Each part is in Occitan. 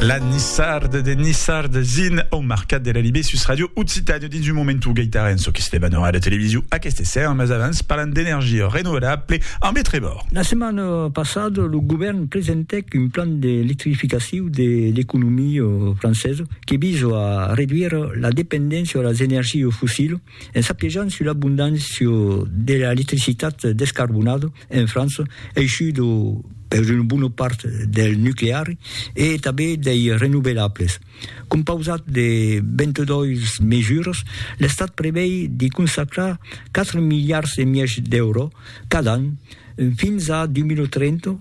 La Nissarde de Nissarde zin au Marcat de la Libé sus Radio Occitània dins un moment o gaitarè en çò que se debat en ràdio televisiu aqueste esser, mas avans parlan d'energia renovelable ambe Trevor. La setmana passada lo govèrn presentèc un plan d'electrificaciu de l'economia francesa que visa a reduire la dependéncia a las energias fossilas En s'apiejant sus l'abondància de l'electricitat descarbonada en França, eishuda per una bona part del nucleari e tanben dei renovelables. Compausat de 22 mesuras, l'Estat prevei de consacrar 4 miliards e mièg d'èuro cada an fins a 2030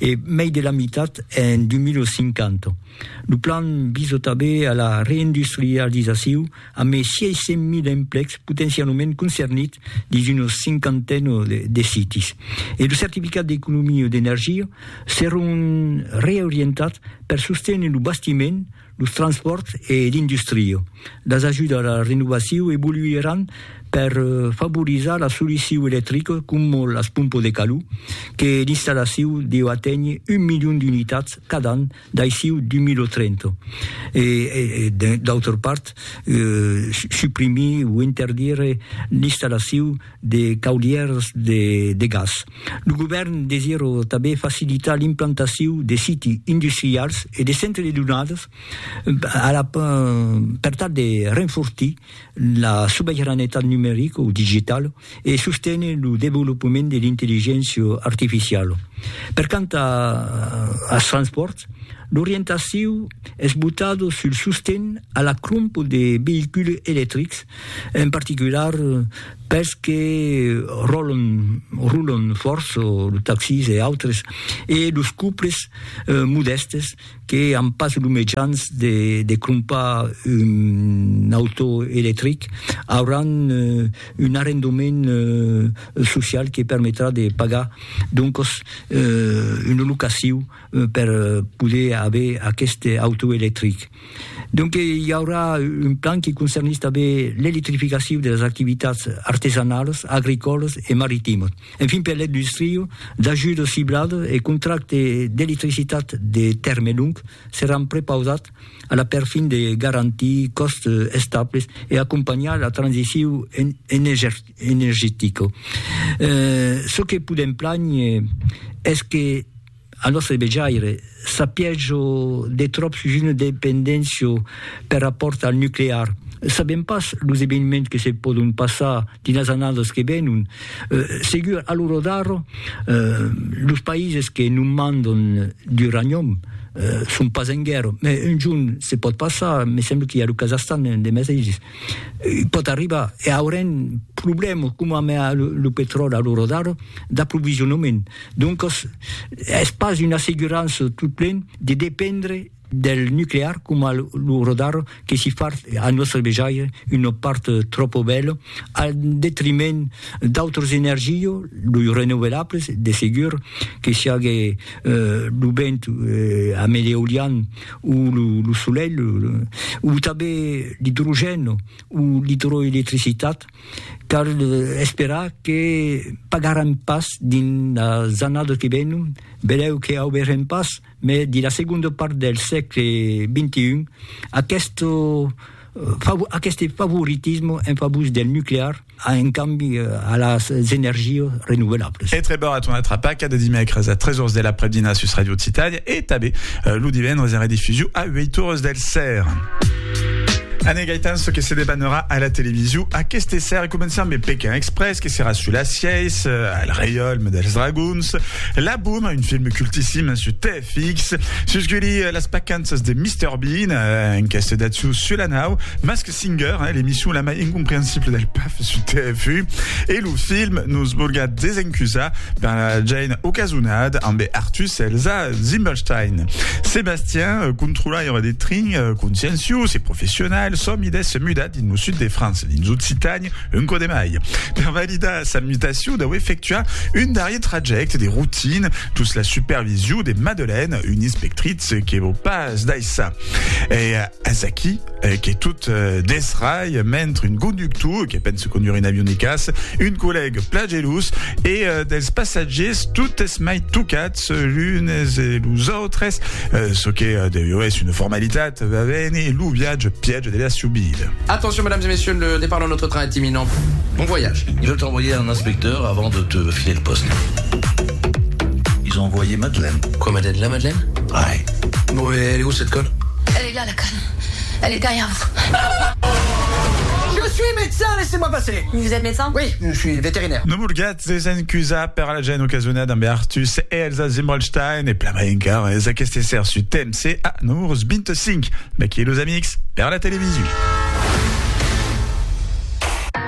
e mei de la mitat en 2050. Lo plan visa tanben a la reindustrializaciu a mei 600.000 emplecs potencialament concernits dins una cinquantena de sites e lo certificat d'economia d'energia serà un reorientat per sostener lo bastiment, los transpòrts e l'industria, las ajudas a la renovacion evoluiràn per favorizar la solucion electrica coma las pompas de calor, que l'installacion deu aténher un milion d'unitats cada an d'aicí 2030, e d'autra part, suprimir o interdire l'installacion de caudièrs de gas. Lo govèrn desira tanben facilitar l'implantacion de siti industrials e de centres de donadas per tal de renfortir la subiranetat numerica o digitala e sostener lo desvolopament de l'intelligéncia artificiala. Per quant als transpòrts, l'orientacion es botada sul sosten a la crompa de veïculs electrics en particular pels que ròlan, rolan fòrça, los taxis e autres, e los couples modèstes que an pas los mejans de de crompar un autò electric, auràn un arrendament social que permetrà de pagar doncas una locacion per poder aver aqueste autò electric. Donc i aurà un plan qui concernís tanben l'electrificacion de las activitats artesanalas, agricòlas e maritimas. Enfin per l'industria, d'ajudas cibladas e contractes d'electricitat de tèrme long seràn prepausats a la perfin de garantir còstes estables e acompanhar la transicion energetica. Çò que podèm plànher es que, Al nòstre vejaire, sapiètz-o de tròp sus una dependéncia per rapòrt al nuclear. Sabèm pas los eveniments que se pòdon passar dins las annadas que venon. Segur, a l'ora d'ara, los païses que non mandon d'uranium son pas en guèrra, mai un jorn se pòt passar, me sembla qu'i a lo Kazahstan de meteis. Pòt arribar, e aurem problèmas coma amb lo petròli a l'ora d'ara, d'aprovisionament. Doncas, es pas una assegurança totplen de dependre del nuclear coma a l'ora d'ara, que si fa a nòstre vejaire una part tròpa bèla al detriment d'autras energias, los renouvelables, de segur, que siágue lo vent amb l'eolian, o lo solelh, o tanben l'idrogèn o l'idroelectricitat, cal esperar que pagarem pas dins las annadas que venon, benlèu que auberem pas, mai dins la segonda part del sègle XXI, aqueste favoritisme en favor del nuclear, a un cambi a las energias renovelables. E treba a tornar tra paca de dimècres a 3 ors de l'aprèp-dinar sus Radio Occitània e tanben lo divendres en redifusion a 8 ores del ser. Anne Gaetan, ce que se debanera a la television aquest essai començant de Pékin Express, que sera sur la sièce, euh, al reiolme dels dragons, La Boom, un film cultissime sur TFX, susguli euh, les pacances de Mr Bean, euh, un casse d'atsou sur la nau, mas que Singer, eh, l'emission la mai incomprehensible del PAF sur TFU, e lo film nos volga desencusar per la Jane ocasonada amb Artus Elsa Zimmelstein. Sébastien, euh, controlaire de trin, euh, consciencius e professional, somides se muda dins lo sud de França, dins Occitanie, un code mai. Per validar sa mutacion, deu efectuar un darrier traject de routine tous la supervision de Madeleine, une inspectrice que vos pas daissa. E Es aquí eh, que tot eh, desrai mentre un conductor que pensa conduir un avion de caça, un collègue plagelós e eh, dels passatgers totes mai tocats eh, l'unes e los autres, eh, ce que eh, deu es una formalitat, va bene, lo viatge piège de la subida. Attention, mesdames et messieurs, le départ de notre train est imminent. Bon voyage. Je vais t'envoyer un inspecteur avant de te filer le poste. Ils ont envoyé Madeleine. Quoi, Madeleine La Madeleine Ouais. Bon, mais elle est où cette conne Elle est là la canne, elle est derrière vous. Je suis médecin, laissez-moi passer. Vous êtes médecin? Oui, je suis vétérinaire. No morgatz es en cusa per la gent ocasiona damb Artus e Elsa Zimmelstein e plan mai encara es aqueste esser su TMC a numurus 25. D'aquí los amics per la televisu.